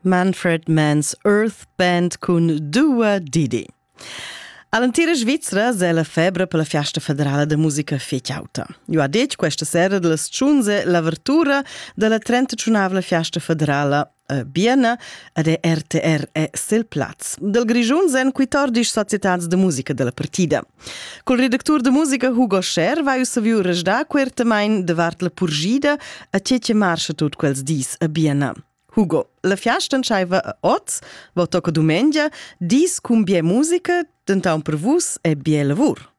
Manfred Mann's Earth Band cun Dua Didi. All'entira Svizra è la febra per la fiasta federala da musica fetg auta. Jo ha detg questa sera della sciunze l'avertura della 35 fiasta federala a Biena ed è RTR è sel plaz. Del Grigiun sen quitordis societats de musica della partida. Col redactur de musica Hugo Scher vai ussa viu resdar quertamain davart la purgida a che che marcha tut quels dis a Biena. Hugo, la fiasta entschaiva a oz, va tocca dumengia, dis cun bia musica, denton per vus è bia lavur.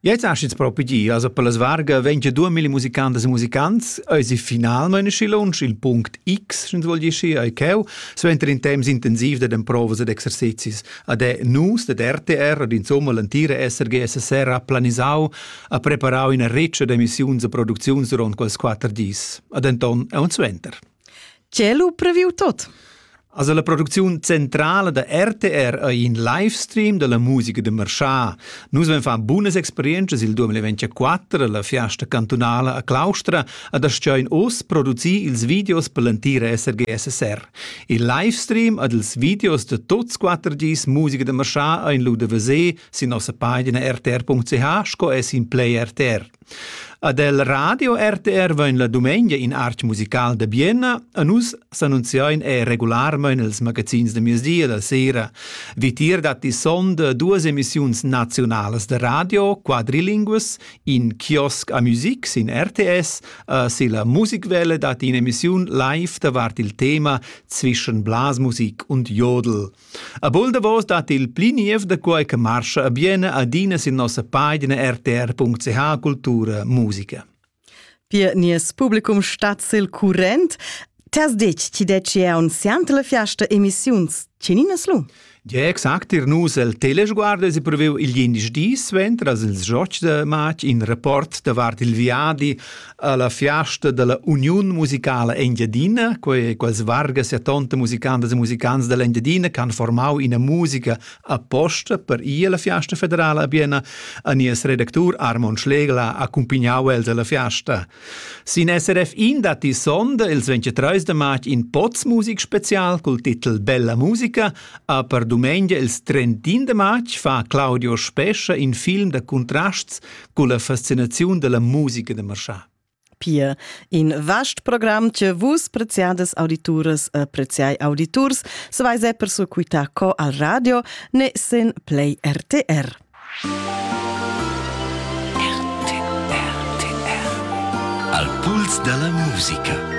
Jetzt hast jetzt propedia, also per las varga venti due mille musicantes e musicants, eisi finalmente si lunsch il punct X, wenn du wohl geschi, ei cheu, suenter in temps intensiv da den Provas ed exercizis, Ad è nus ded RTR ad insomma l'antira SRG-SSR ha planisau, ha preparau ina riccia d'emissiuns e producziuns duront quels quatter dis. Ad enton è on suenter. Cielo previu tot. Also la producziun centrala da RTR è in livestream della musica de Marchà. Nus vam far bunas experiences il 2024 alla fiasta cantunala a Claustra ad aschain oss producir ils videos per l'antira SRG-SSR. Il livestream ed ils videos da tuts quatter gis musica da marschà ein lu da veser sin nossa pagina rtr.ch sco es in Play RTR. Ad el Radio RTR vain la dumengia in art musical da Bienna e nus s'annunziain er regularmain els magazins da miezdia da sera. Vitier datti sonda duas emissiuns naziunalas da radio, quadrilinguas, In kiosk a music sin RTS uh, silla Musikwelle dat in'emissiun live davart il tema zwischen Blasmusik und Jodel. A bul davos dat il pli niev da quai che marscha a biene adina sin nossa pagina rtr.ch Cultura Musica. Pir nies publicum stat sil current. T'has detg ti detg è aunziant la fiasta emissiuns. Tgeninas lu? Ja, exact, ir nus el Telesguardo si previu il jindisch dis suenter als ils Jocks de Matsch in rapport davart il viadi alla fiasta della Uniun musicala Engiadina, quei quels vargas e tonte musicantas e musicants dell'Engiadina che han formau ina musica Aposta per ir alla fiasta federala a Bienna ha nies redactur Armon Schlegel accumpagnau els alla fiasta. Sin SRF in datti sonda ils 23 de marz in Poz Musik Spezial col titel Bella Musica, a per dumengia ils 31 de marz fa Claudio Spescha in film de contrasts cun la fascinaziun della musica de marchà. Pia in vast program che vus preziades audituras e preziai auditurs sveise per sequitar co al radio ne sen play RTR. RTR. Al puls dalla musica.